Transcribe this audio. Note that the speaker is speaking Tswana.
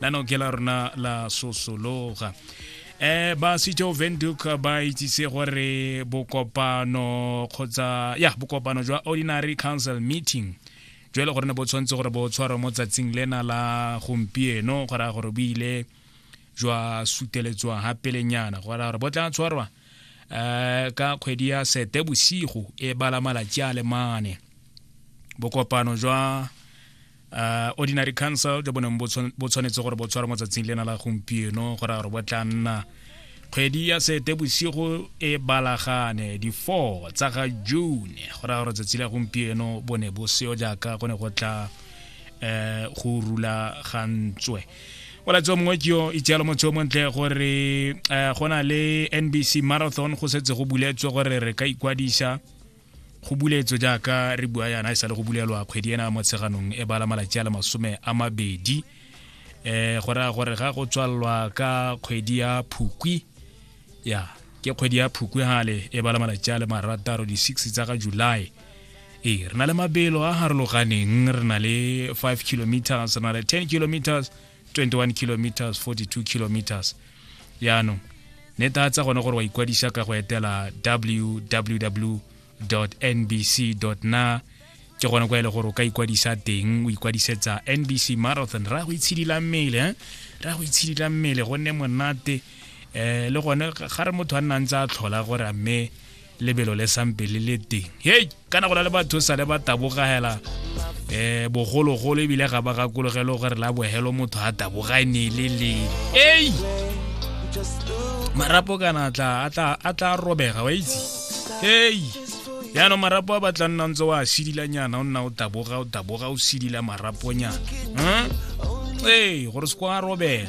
la noke la rona la sosologa eh ba sitho venduk ba itsise gore bokopano kgotsa ya bokopano jwa ordinary council meeting jo e le gore ne bo tshwanetse gore bo tshwarwa mo tsatsing lena la gompieno go raya gore bo ile jwa suteletswa ga pelenyana go raya gore bo tla tshwarwa um ka kgwedi ya sete bosigo e bala malatsi a le mane bokopano jwa uh, ordinary council jo boneng bo tshwanetse gore bo tshwarwa mo tsatsing lena la gompieno gore gore bo tla nna kgwedi ya sete bosigo e balagane di-four tsa ga june go raya gore tsatsi la gompieno bo ne bo seo jaaka go ne go tla um go rulagantswe olatso mongwe ke yo itsealo motho yo montle gore um go na le nbc marathon go setse go buletswe gore re ka ikwadisa go buletswe jaaka re bua yana e sa le go bulelwa kgwedi ena mo tsheganong e bala malatsi a le masome a mabedi um go raya gore ga go tswalelwa ka kgwedi ya phukwi ya ke kgwedi ya phukwi gale e bala malatsi a le marataro di-six tsa ga july ee re na le mabelo a harologaneng re na le five kilometers re na le ten kilometers 21 kilometers 42 kilometers yaanong ne ta tsa gone gore wa ikwadisa ka go etela www nbc na ke gone kwa e le gore o ka ikwadisa teng o ikwadisetsa nbc marathon ra go itshidila mmele eh? ra go itshidila mmele gonne monate um le gone ga re motho a nnang tse a tlhola gore a mme lebelo le sampe le le teng hei kana go na le batho sale ba tabogela um eh, bogologolo ebile ga ba gakologelo gore la bohelo motho a tabogane le le ei marapo kana tla a tla robega wa itse ei yaanong marapo a batla nna ntse wa sidilanyana o nna o taboga o taboga o sidila maraponyana hm? ee gore se kwa robega